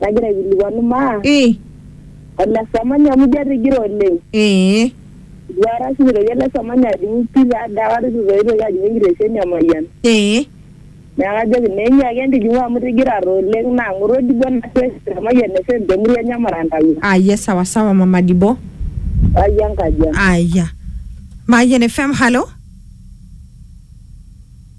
nagira aikilikuanu maa Ii. ole samanya amu ijo atigira oleng. Ee. Eitu aikata oshi eitoki ele samanya ajing'u pii taa ade aikata eitu taa eitoki ajing'u enkitesheni e Mayian. Ee. Neeku ajoki naa enyiaki entijing'u amu itigira taa oleng naa ng'oru Odibo nashukoki te Mayian FM te murua enye Marantau. Aya sawa sawa mama Dibo. Ai enkaji ang. Aya. Mayian FM, halo.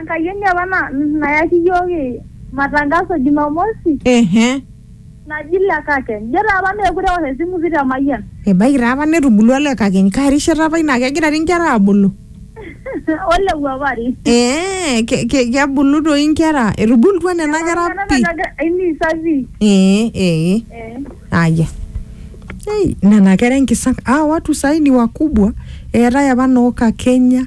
Enkayioni apa na, nayaki iyiook matangaso e Jumamosi Ehe. naji Lekakeny. Ijo taa apa meekure eosh esimu pi te Mayian. Ebaiki taa apa netubulua Lekakeny. Kaa rishata apa ina? Kegira dii nkera aabulu? Oleu apa ari. Ee, ke- ke- kebulu doi nkera? Etubulutua nena kera Eton pi? egira aimisa pi. Ee, ee. Eh. Aya. Ei, nena kera enkisang. Hawa watu sahi ni wakubwa. Eetae apa noo Kakenya.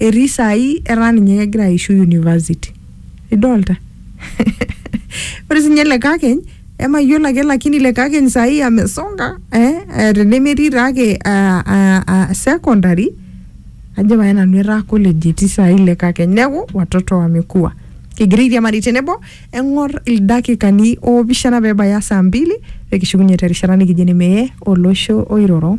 Etii saai etaa ninye kegira aishu university. Idolta? Ore sinye ele kakeny, emayiolo ake lakini ile kakeny saai amesonga, eh tenemetii taake secondary, ajo pae nanu etaa college etii saai ile kakeny. Neeku, watoto wamekua. Kigira airiamari tenebo, eng'or ildakikani opishana pebaya saa mbili, pikishukunye terishata nikijo ene meye olosho oiroro.